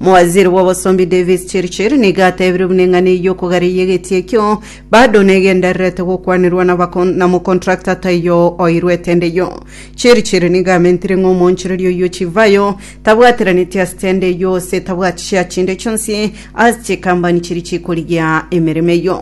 Omowaziri bw'obosombi Davis Chirchir nigo atebirie buna eng'ana eyio okogareia egetie ekio bado negendererete gokwanirwa na bakon- na mocontractor taiyo oirwe etende eyio. Chirchir nigo amentire ng'a omoonchoreria oyio chivayo tabwatiraneti ase tende eyio gose tabwati share chinde chionsi ase chikambani chiria chikorigia emeremo eyio.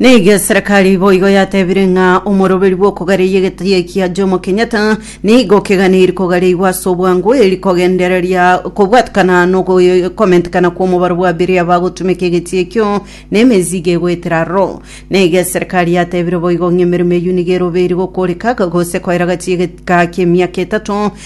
Nigo eserekari boigo yatebire ng'a omoroberi bw'okogareria egetaiyo kia Jomo Kenyatta nigo keganiri kogareigwa ase obwango eri kogendereria kobwatikana nogokomentikana kw'omobaro bwa biria bagotumeka egetiyo ekio na emezigo egoetera aroro. Nigo eserekari yatebire boigo ng'a emeremo eyio nigo erobeiri gokoreka gose koera gachie egeka ki'emiaka etato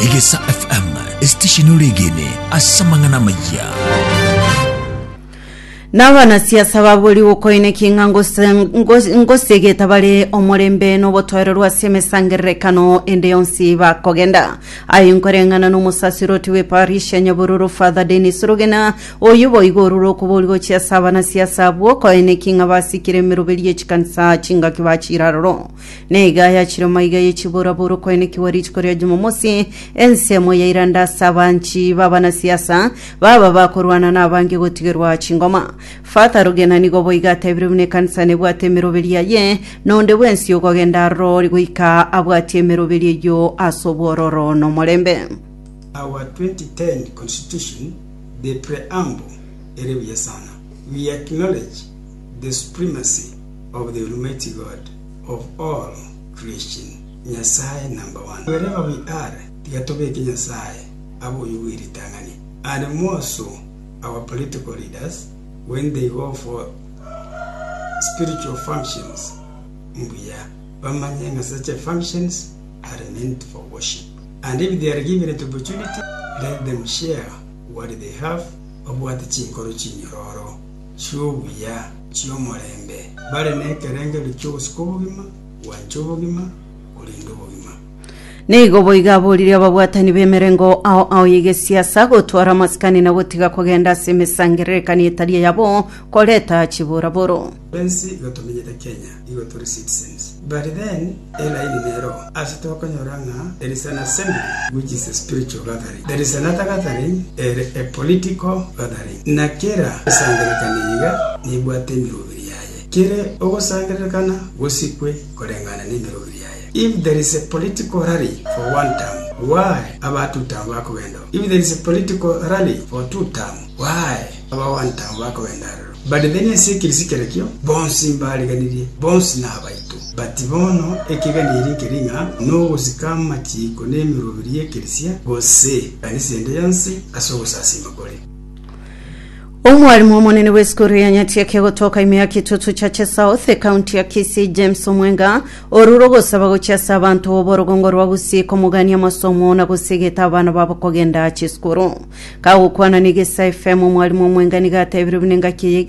Egesa FM, esitesheni oregene ase amang'ana amayia. Na abanasiasa babori gokoine ki ng'a ngose- ngos- ngosegeta bare omorembe n'obotoereru ase emesangererekano ende yonsi bakogenda aye nkoreng'ana n'omosasiroti w'eparish ya nyabururu father denis rugena oyo boigo orure okobori gochia ase abanasiasa bwokoine ki ng'a basikire emeroberio y'echikanisa chingaki bachiraroro Naiga ayachire omaiga ye chiborabora okoenekigwa rituko ria Jumamosi, ensemo yairanda ase abanchi b'abanasiasa baba bakorwana na abange gotigerwa chingoma. Father Rugena nigo boiga atebire buna ekanisa nebwate emeroberi yaye, nonde bwensi okogenda aroro ore goika abwatie emeroberi eyio ase obwororo na omorembe. Our 2010 Constitution, the Preamble, ere buya sana. We acknowledge the supremacy of the Almighty God of all creation, Nyasae number one, wherever we are, tiga tobeke Nyasae abe oyio bwe ritang'ani, and more so our political leaders when they go for spiritual functions, mbuya bamanye ng'a such functions are meant for worship, and if they are given the opportunity, let them share what they have, babwate chinkoro chinyororo. chi'obuya chi'omorembe, bare nekerengerio ki'ogosika obogima, gwancha obogima, korenda obogima. Nigo boigo aboririe ababwatani b'emerengo ao ao y'egesiasa gotwara amasikani na gotiga kogenda ase emesangererekania etari eyabo koreta chiboraboro. Ensi iga tomenyete Kenya. igo tori citizens. But then eline nero ase tokonyora ng'a there is an assembly which is a spiritual gathering, there is another gathering ere a political gathering, na kera osangererekani iga nebwate emeroberi yaye. Kere ogosangererekana gosikwe koreng'ana nemeroberi yaye. If there is a political rally for one term, why aba two term bakogenda oo? If there is a political rally for two term, why aba one term bakogenda aroro? But then ense ekirisikerikio, bonsi mbariganirie, bonsi nabaito. But bono ekegani eri nkeri ng'a nogosika amachiiko nemirobiri y'ekerisia, gose ekanisa ende yonsi, ase ogosasiima kore. Omwarimu omonene bw'esukuru ya Nyatiaki egotoka ime ya Kitutu Church South, ekaunti ya Kisii, James Omwenga, orure ogosaba gochia ase abanto b'oborogongo rwa Gusii komogania amasomo na gosegeta abana babo kogenda chisukuru. Kagokwana na egesa FM omwalimu omwengani gatebirie buna engaki eye iga.